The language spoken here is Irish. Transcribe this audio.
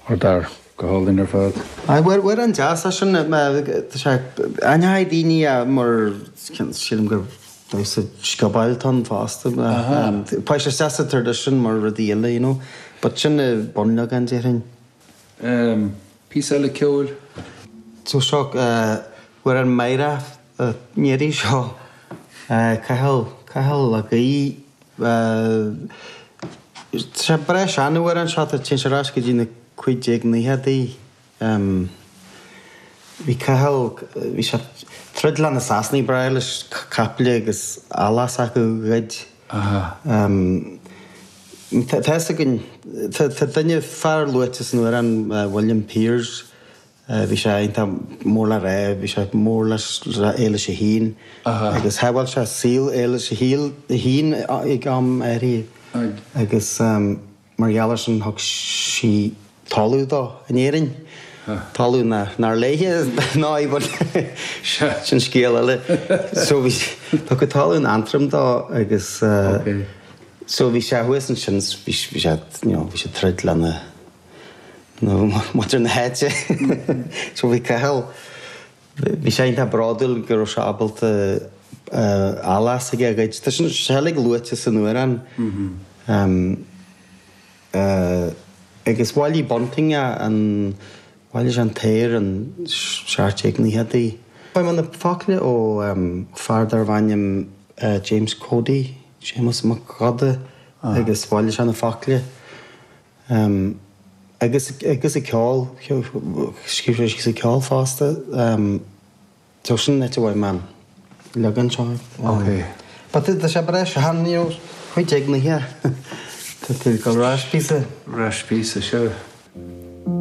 Or dar, go hálainn ar fad. Aye, bhuel, bhuel, an deas é sin, tá sé, aithneoidh daoine é, mar, sílim gur damhsa sciobóil atá ann fosta, poist is deas sa tradition mar rud a dhéanamh, you know, but sin an bunleagan de thing. Ehm, píosa eile ceoil? So seo, bhuel, an Máire, an Néirí seo, Cathal, Cathal Mac Aodha. Tá breis an t-amhrán seo, téann sé ar ais go dtí na 1590idí. Bhí Cathal, bhí sé ag troid lena Sasanaigh ba bhreá leis capaill agus eallach s'acu a ghoid. Tá a fhios againn, tá duine fear luaite san amhrán, William Piers, Eh, bhí sé iontach mór le rá, bhí sé mór le hÉilis a hAon agus shábháil sé saol Éilis a hAon ag am áirithe agus mar gheall air sin thug sí talamh dó in Éirinn, talamh nár léithe í bhuel sin scéal eile. So bhí, tugadh talamh in Antrim dó agus eh so bhí sé thuas ansin, bhí sé, you know, bhí sé ag troid lena, nó muintir na háite. So bhí Cathal, bhí sé iontach bródúil go raibh sé ábalta eallach s'aige a ghoid. Tá sin uilig luaite san amhrán. Agus bhailigh Bunting é, bhailigh sé an t-aer, sna 1790idí. Tá na focail ó fear darbh ainm James Cody, Séamus Mac Óda, agus bhailigh sé na focail. Um, agus, agus an ceol, scríobh sé síos an ceol fosta. Um, so sin nite uaim, um, leagan seo. Um, ok. But tá sé breis, han níor chuid ag na hea. Tá tú ag gabháil a rá píosa. Rá píosa, sure.